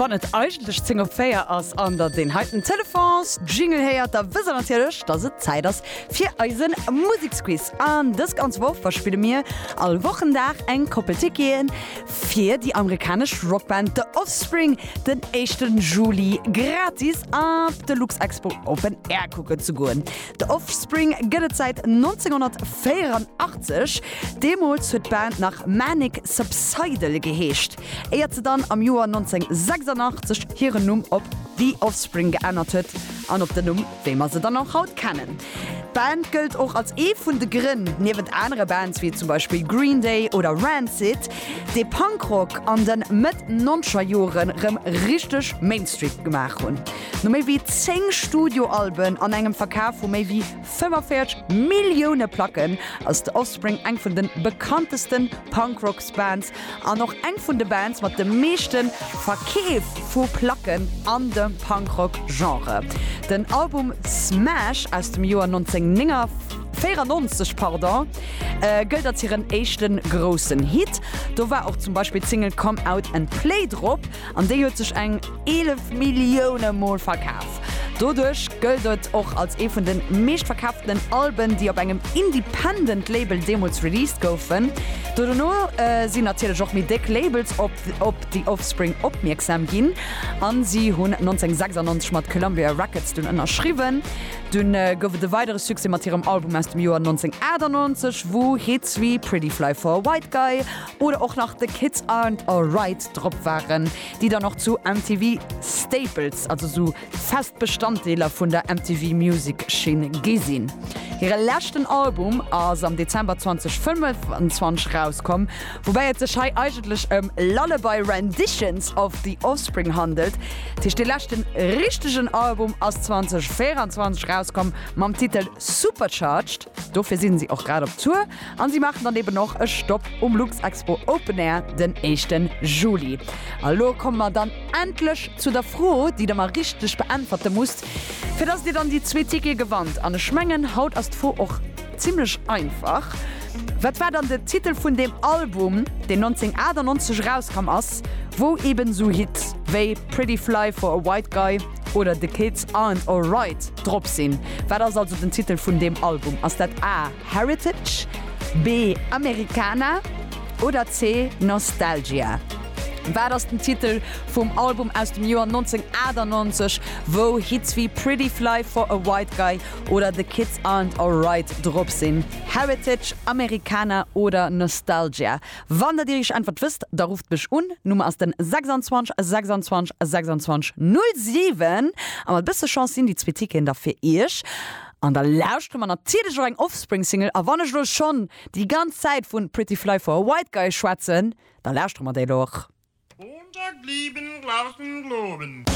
Wann et eigentlech 10 op 4 ass an der deen heiten Telefons Jingle héiert, da wësst der natierlech, dass et Zäit ass fir eisen Museksquiz. An dës ganz Woch verspille mir all Wochendag eng Koppel Ticketen fir déi amerikanesch Rockband The Offspring den éischten Juli gratis op de Luxexpo Open Air kucken ze goen. D'Offspring gëtt et säit 1984. Deemools huet d'Band nach Manic Subsidal geheescht, éiert se dann am Joer 1986 hiren Numm op The Offspring geännert huet an op den Numm, wéi mer se dann och haut kennen. D'Band gëllt och als ee vun de Grënn, niewent anere Bands wéi zum Beispill Green Day oder Rancid, dee Punkrock an de Mëtt-Nonzgerjore rëm richteg Mainstream gemaach hunn. No méi wéi 10 Studioalben an engem Verkaf vu méi wéi 45 Millioune Placken ass The Offspring eng vun de bekanntesten Punk-Rock-Bands an och eng vun de Bands mat de meeschte Verkeef vu Placken an dem Punk-Rock-Genre. Den Album Smash aus dem Joer 1994 gëllt als hiren éischte groussen Hit. Do war och zum Beispill d'Single Come Out And Play drop. An déi huet sech eng 11 Millioune Mol verkaf. Doduerch gëllt et och als ee vun de meeschtverkaaftenen Alben, déi op engem Independent Label deemools released goufen. Do dono sinn natierlech och méi déck Labels op The Offspring opmierksam ginn a si hunn 1996 mat Columbia Records dunn ënnerschriwwen. Dunn gouf et e weidere Succès mat hirem Album aus dem Joer 1998, wou Hits wéi Pretty Fly for a White Guy, Oder och nach The Kids Aren't Alright drop waren, déi dann och zu MTV Staples, also esou fest Bestanddeeler vun der MTV Music Schinn gi sinn. Hire leschten Album ass am Dezember 2025 erauskomm, woubäi et sech hei eigentlech ëm Lullaby Renditions of The Offspring handelt. Dat heescht, dee leschten richtegen Album ass 2024 erauskomm mam Titel Supercharged. Dofir sinn si och grad op Tour an si maachen dann eben och e Stopp um Luxexpo Open Air den éischten Juli. A lo komme mer dann endlech zu der Fro, déi der mer richteg beäntwerte musst, fir dass dir dann déi zwee Tickete gewannt. An ech mengen, haut ass d'Fro och zimmlech einfach, Wat war dann de Titel vun deem Album, deen 1998 erauskomm ass, wou eben esou Hits wéi Pretty Fly for a White Guy, Oder The Kids Aren't Alright drop sinn. Wat ass also den Titel vun deem Album? Ass dat A, Heritage, B, Americana oder C, Nostalgia? Wat ass den Titel vum Album aus dem Joer 1998, wou Hits wéi Pretty Fly for a White Guy oder The Kids Aren't Alright drop sinn? Heritage, Americana oder Nostalgia? Wann der dir iech Äntwert wësst, da rufft mech un. Nummer ass den 26 26 26 07 a mat e bësse Chance sinn déi zwee Ticketen da fir iech. An da lauschtere mer natierlech och eng Offspring Single a wann ech elo schonn déi ganz Zäit vun Pretty Fly for a White Guy schwätzen, da lauschtere mer déi elo och. Montag lieben glauben globen.